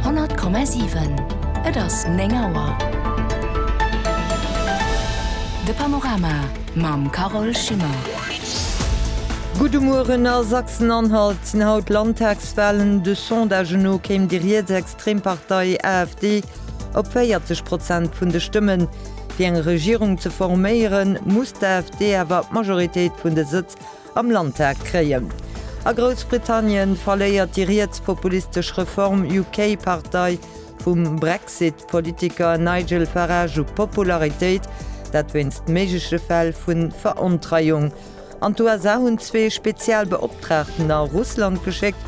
100,7. Et ass 9 Auer. De Panorama mam Carole Schimmer. Gudde Mueren. A Sachsen-Anhalt sinn haut Landtagswalen. De Sondagë no kéim déi rietsextrem Partei AfD op 40 Prozent vun de Stëmmen. Fir eng Regierung ze forméieren, muss d'AfD awer d'Majoritéit vun de Sëtz am Landtag kréien. A Groussbritannien verléiert déi rietspopulistesch Reform UK Partei vum Brexit Politiker Nigel Farage u Popularitéit, dat wéinst méigleche Fäll vu Verontreiung. An d'USA hunn zwee Spezialbeoptraagten a Russland geschéckt,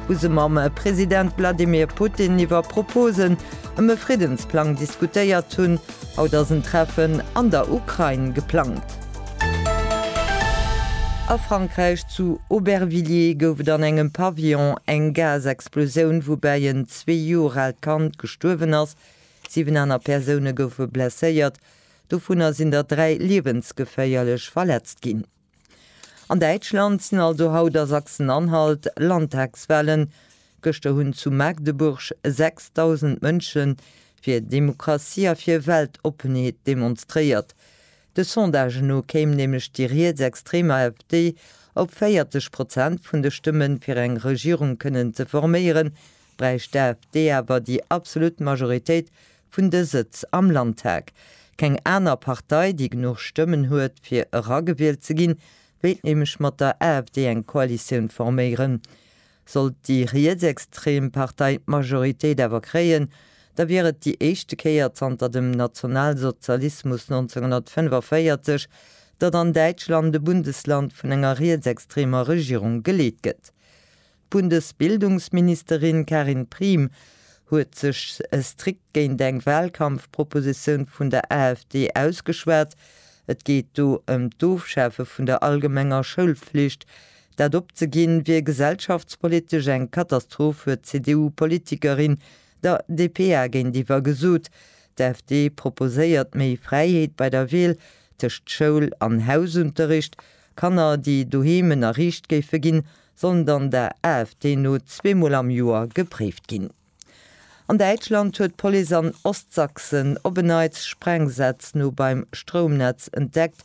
wou se mam President Wladimir Putin iwwer Proposen ëm e Friddensplang diskutéiert hunn. Haut ass en Treffen an der Ukrain geplangt. A Frankräich, zu Aubervilliers, gouf et an engem Pavillon eng Gasexplosioun, woubäi en zwee Joer aalt Kand gestuerwen ass. Siwen aner Persoune goufe blesséiert, dovunner sinn der dräi liewensgeféierlech verletzt ginn. An Däitschland sinn also haut a Sachsen-Anhalt Landtagswalen. Gëschter hunn zu Magdeburg 6.000 Mënsche fir Demokratie a fir Weltoppenheet demonstréiert. De Sondage no kéim nämlech déi rietsextrem AfD op 40 Prozent vun de Stëmmen. Fir eng Regierung kënnen ze forméieren, bräicht d'AfD awer déi absolut Majoritéit vun de Sëtz am Landtag. Keng aner Partei, déi genuch Stëmmen huet fir eragewielt ze ginn, wéilt nämlech mat der AfD eng Koalitioun forméieren. Sollt déi rietsextrem Partei d'Majoritéit awer kréien, da wier et déi éischte Kéier zanter dem Nationalsozialismus 1945, datt an Däitschland e Bundesland vun enger rietsextremer Regierung geleet gëtt. D'Bundesbildungsministerin Karin Priem huet sech strikt géint eng Wahlkampfpropositioun vun der AfD ausgeschwat. Et geet do ëm d'Ofschafe vun der allgemenger Schoulflicht, Dat opzeginn, wier gesellschaftspolitesch eng Katastroph, huet d'CDU-Politikerin der dpa géintiwwer gesot. D'AfD proposéiert méi Fräiheet bei der Wiel tëscht Schoul an Hausunterricht. Kanner, déi doheem ënnerriicht géife ginn, sollen dann der AfD no zweemol am Joer gepréift ginn. An Däitschland huet d'Police an Ostsachsen op en Neits Sprengsätz no beim Stroumnetz entdeckt.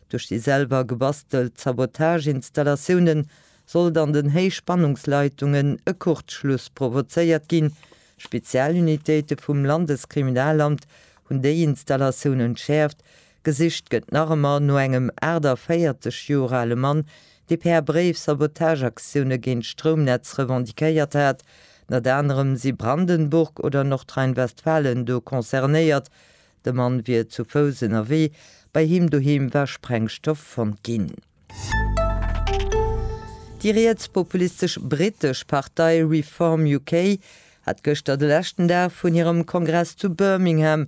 Duerch déi selwer gebastelt Sabotage-Installatioune sollt an den Héichspannungsleitungen e Kurzschluss provozéiert ginn. Spezialunitéite vum Landeskriminalamt hunn déi Installatioun entschäerft, Gesicht gëtt nach ëmmer no engem 48 Joer ale Mann, dee per Bréif Sabotageaktioune géint d'Stroumnetz revendiquéiert hat. Ënnert anerem si Brandenburg oder Nordrhein-Westfalen do concernéiert. De Mann wier zu Fouss ënnerwee, bei him doheem war Sprengstoff fonnt ginn. Déi rietspopulistesch brittesch Partei Reform UK hat gëschter de leschten Dag vun hirem Kongress zu Birmingham.